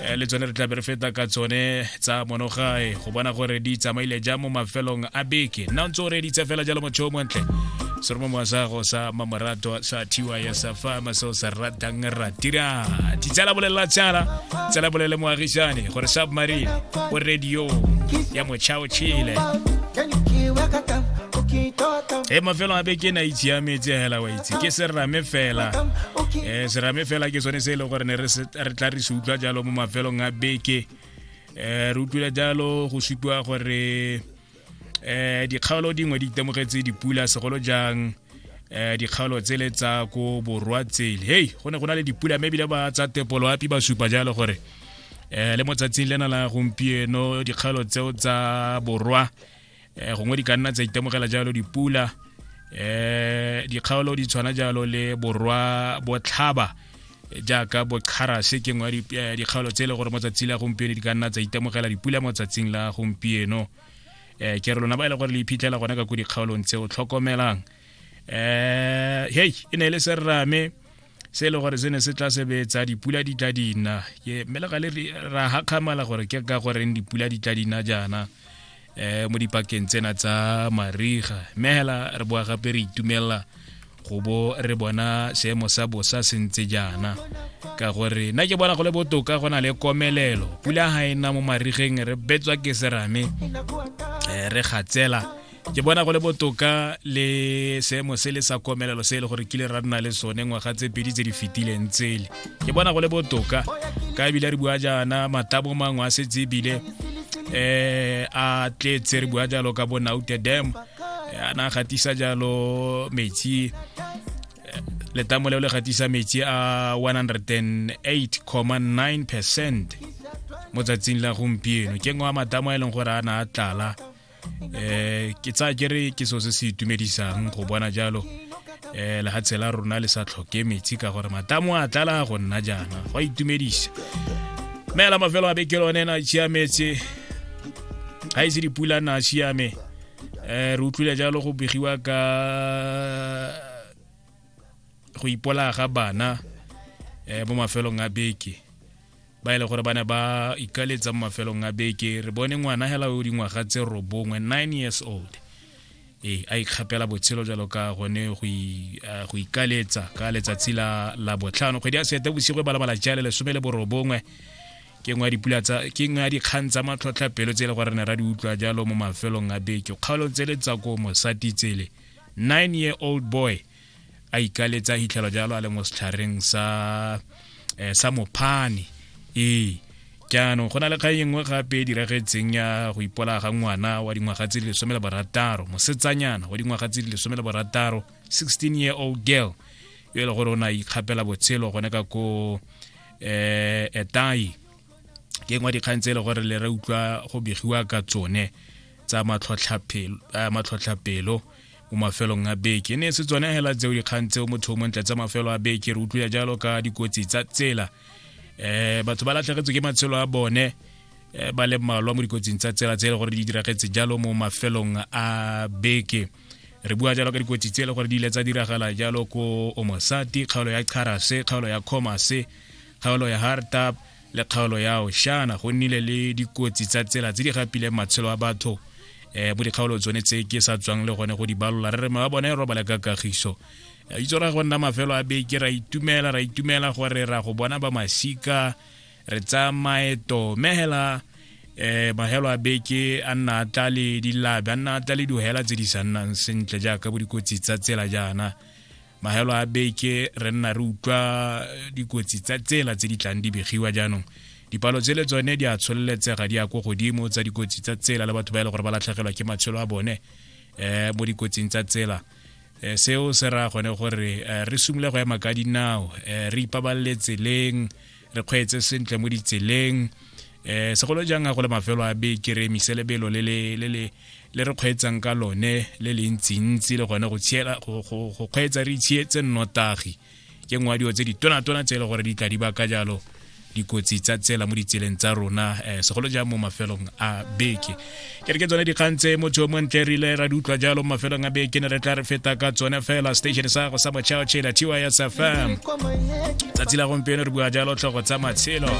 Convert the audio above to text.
Eh, le tsone re tlabe re feta ka tsone tsa monogae go bona gore di tsamaile ja mo mafelong a beke nna ntse o reditse fela jalo motho o montle se re mo moasago sa mamorato sa thiwa ya sa fama seo sa ratang ratira ditsela bolelela tsala tsela bolele moagisane gore submarine o radio ya mochao chile e mafelo a beke na itshiametse hela wa itse ke serame fela um serame fela ke sone se e leng gore ne re se re tla re se utlwa jalo mo mafelong a beke um re utlwile jalo go supiwa gore um dikgaolo dingwe di itemogetse dipula segolo jang um dikgaolo tsele tsa ko borwa tsele hei go ne go na le dipula mme ebile ba tsa tepoloapi ba supa jalo gore um le mo tsatsing lena la gompieno dikgaolo tseo tsa borwa eh, gongwe di ka nna tsa itemogela jalo dipula eh dikgaolo di tshwana jalo le borwa botlhaba jaaka bokgarase ke ngwa eh, dikgaolo tse e le gore mo tsatsi la gompieno di ka nna tsa itemogela dipula mo tsatsing la gompieno eh ke re lona ba e le gore le iphitlhela gone ka ko dikgaolong tse o tlhokomelang eh hey e ne e le serame se e le gore se ne se tla sebetsa dipula di tla dina ke mele ga le ra hakgamala gore ke ka goreng dipula di tla dina jaana eh mo dipakeng tsena tsa mariga mme hela re boa gape re itumelela go bo re bona seemo sa bosa se ntse jaana ka gore nna ke bona go le botoka go na le komelelo pula ga e na mo marigeng re betswa ke serame eh, re gatsela ke bona go le botoka le seemo se le sa komelelo se e le gore kile ra nna le sone ngwaga tse pedi tse di fetileng tsele ke bona go le botoka ka ebile re bua jaana matabo mangwe a setse ebile eh a tletse re bua jalo ka bonaute dam eh, a na gatisa jalo metsi eh, letamo leo le gatisa metsi a 108,9 percent mo tsatsing la gompieno ke ngwe wa matamo a e leng gore a na a tlala eh ke tsa kere ke so se se itumedisang go bona jalo eh lehatshe la rona le sa tlhoke metsi ka gore matamo a tlala go nna jaana go a itumedisa mme la mafelo a beke lone na siametse ga ise dipula na siame eh re utlwile jalo go begiwa ka go ipola ga bana eh mo mafelong a beke ba e le gore ba ne ba ikaletsa mo mafelong a beke re bone ngwana hela o dingwaga tse robongwe nine years old ee a ikgapela botshelo jalo ka gone go ikaletsa ka letsatsi la la botlhano kgwedi ya sete bosigo e balabala jale lesome le borobongwe ke nngwe ya dipula tsa ke nngwe ya dikgang tsa matlhotlha pelo tse e le gore ne ra di utlwa jalo mo mafelong a beke kgaolo tse le tsa ko mosati tsele nine year old boy a ikaletse a hitlhelwa jalo a le mo setlhareng sa eh, sa mophane ee jaanong go na le kgang e nngwe gape e diragetseng ya go ipola ga ngwana wa dingwaga tse di lesome le barataro mosetsanyana wa dingwaga tse di lesome le barataro 16 year old girl yo e le gore o ne a ikgapela botshelo gone ka ko eh etai ke ngwa dikgang tse e le gore le re utlwa go begiwa ka tsone tsa matlhotlhapelo eh, mo mafelong a beke ne se tsone hela tseo dikgang tseo motho mo ntle tsa mafelo a beke re utlwile jalo ka dikotsi tsa tsela um batho ba latlhegetswe ke matshelo a bone eh, ba le mmalwa mo dikotsing tsa tsela tse e le gore di diragetse jalo mo mafelong a beke re bua jalo ka dikotsi tse e le gore di ile tsa diragala jalo ko omosati kgaolo ya charase kgaolo ya comase kgaolo ya hardtap le kgaolo yao shana go nnile le dikotsi tsa tsela tse di gapileng matshelo a batho um eh, bo dikgaolo tsone tse ke sa tswang le gone go di balola re re ma ba bone e robala ka kagiso eh, itse ra go nna mafelo a beke ra itumela ra itumela gore ra go bona ba masika re tsaya maeto mehela um magelo a beke a nna a tla le dilabe a nna a tla le dihela tse di sa nnang sentle jaaka bo dikotsi tsa tsela jaana mahelo a beke re nna re utlwa eh, dikotsi tsa tsela tse di tlang di begiwa jaanong dipalo tse le tsone di a tsholeletsega di ya ko godimo tsa dikotsi tsa tsela le batho ba e le gore ba latlhegelwa ke matshelo a bone um mo dikotsing tsa tsela um seo se raya gone gore re simole go ema ka dinao um re ipabalele tseleng re kgweetse sentle mo ditseleng eh segolo jang go le mafelo a be ke re miselebelo le le le le le re kgweetsang ka lone le le ntsi ntsi le gone go tshiela go go go kgweetsa re itshietse nnotagi ke nngwe dio tse di tona tona tse le gore di tla di ba ka jalo dikotsi tsa tsela mo ditseleng tsa rona eh segolo jang mo mafelong a beke ke re ke tsone dikgang tse motho yo montle rile ra di utlwa jalo mo mafelong a beke ne re tla re feta ka tsone fela station sa go sa mochao chela tys fm tsatsi la gompieno re bua jalo tlhogo tsa matshelo